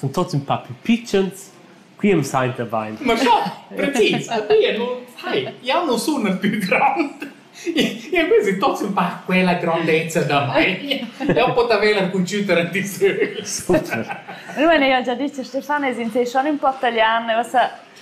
sun tots ün pa plü pitschens, qui am sainta bain. Ma già, precis, a tie nu, hai, jau nu sun ün pü grand. Io quasi tots ün pa quella grandezza da mai. Eu pot aver la computer a disögl. Super. Allora, hai già detto Stefano, es in te schon un po' italian, uossa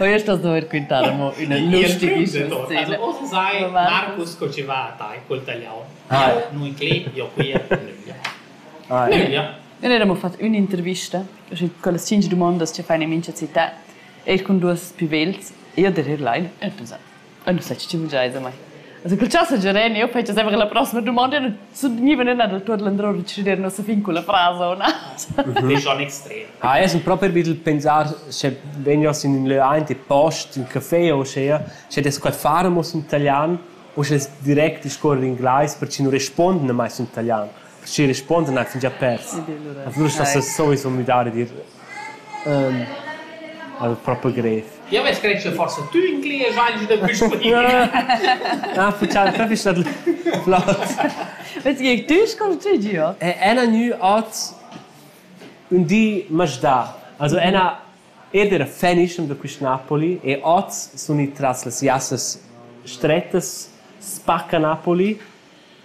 Oia sto dover quintar amo üna lustige scena. Ossa sai Marcus co ci va a tai col tagliaun. Nu inclin io qui a nüglia. Nüglia. Noi eramo fat ün'intervista con las cinc dumondas che fan in mincha città, eir cun duos pivels, e io der er lein, er pensat. Ün sech cimgiai semai. Also cul chass giareni eu fetsch sempre la prossima dumonda e sun gniva ünna dal tuot landrour decider nossa fin culla frasa o na. Disch an extrem. Ah, io sun propi be dal pensar sche vegnas in ün lö aint e post ün café o uschea, sche dess quai far amo sün italian o sche es direct discuorrer inglais perche nu respuondan mai sün italian. Perche respuondan ai fingià pers. A füra sta soi sum müdar e dir Al fa per grev. Jeu vess creschiu forsa tü in clia schagl da puspodina. Ah, faccial fefis dat flauts. Vez gie tü sco tü giu. Ella gnü hoz ün di masdà. Also ena ed era fenischem da quist Napoli e hoz sun i tras las jassas strettas spacca Napoli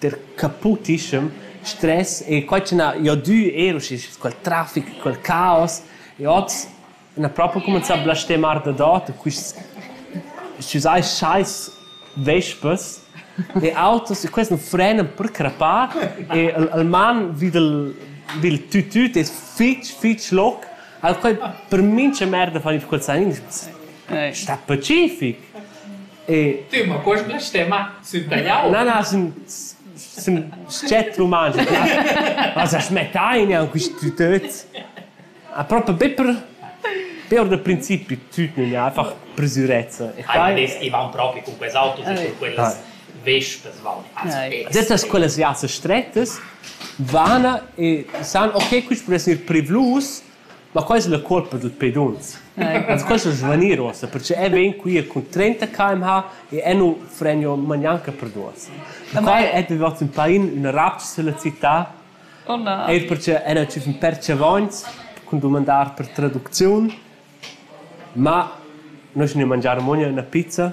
Der capotischem stress e quai ch'na jo dü eir usche quel trafic, quel caos e hoz n'ha propo cumanzà a blastemar dadot quists s-chüsai schais vespas e autos e quels nu frenan per crapar e el el man vi dal vi il tütüt es fich fich loc. Al quai per mincha merda fan i col sanin, sta pacific. Tüma, quest blastema sün tagliau? Na, na, sün, sün scet rumantsch. As as mettain an quist tütöt. A propa be per per da principi tut nun è einfach presurezza. E quai e van propi con quels autos e con quellas vespas van. Dettas quellas viasse strettas vana e san ok quist può essere privlus Ma quai es la cuolpa dad pedunzs. Las questas svanir uossa perche eu vegn quia cun trenta kmh e eu nu fregno magnanca per duos. Quai es vivats ün pain, üna rabgia sulla città. Oh na. Eir perche eu n'ha tschüf ün pèr tschavogns cun dumandar per traducziun, ma no schi ne mangiar amuogna üna pizza.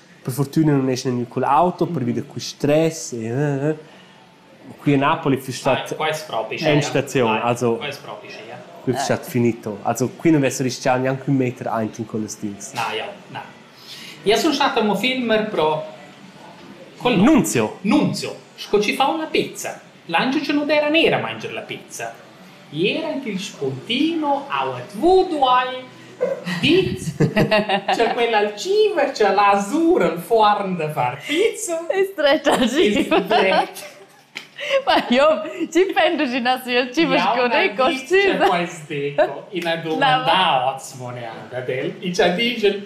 Per fortüna nun esa gnü cul auto pervi da quist stress e qui a Napoli füss stat in staziun, also füss stat finito. Also qui nu vess rischà gnanc ün meter aint in quellas stils. Na, jau, na. Ia sun stat amo filmer pro... Col nom. Nunzio. Nunzio, sco ci fa una pizza. L'Anciucelo d'era nera mangia la pizza. Ier anc il spuntino auet vudu hai dit cha quella algiva cha l'ha sur al forn da far pizza Es dret algiv. es dret. Ma io ci penso ci nassi il cibo Jau sco n'ha dei dit cha costüm. quels deco ina domanda oz mon ad el e cha digel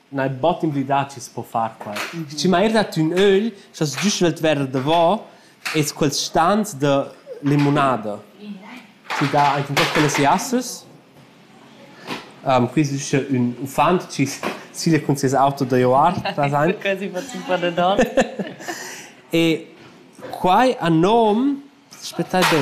Neir bod emblidà chi's po far quai. Schi ma eir da tün ögl sast giü svelt verer davo es quels stans da limunada chi dà aint in tuot quellas jassas. Quis es usche ün uffant chi siglia cun seis auto da joar trasaint. Quasi fats ün po da don. E quai a nom, aspettai be.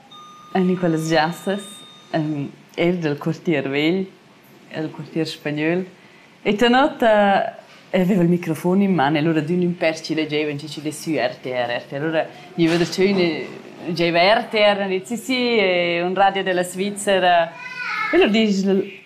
En in quellas giassas, ehm, eir dal quartier vegl, el quartier spagnöl. E tenor ta aveva il microfon in man e lura d'ün ün pèr chi legevan chi chi less sü RTR. RTR. Lura gniva darcheu ün giaiva RTR, ün di sì sì, un radio della Svizzera. E lur disch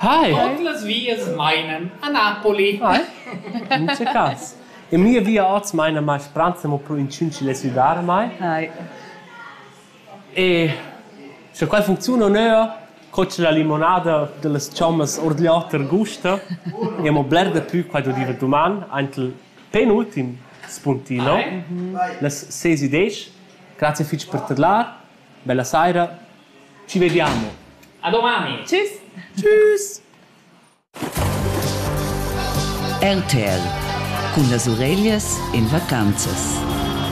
Tuot las vias mainan a Napoli. In che cas? E mia via oz maina mai Franza mo pro inchün chi less üdar a mai. E scha quai funcziuna u nö, cotsch la limonada da las chommas our d'là per gusta e amo bler dapü quai do dir duman aint il penultim spuntino. Las ses üdesch. Grazie fich per tadlar. Bella saira. Ci vediamo. A domani. Tschüss. Tschüss. RTL cun las ureglias in vacanzas.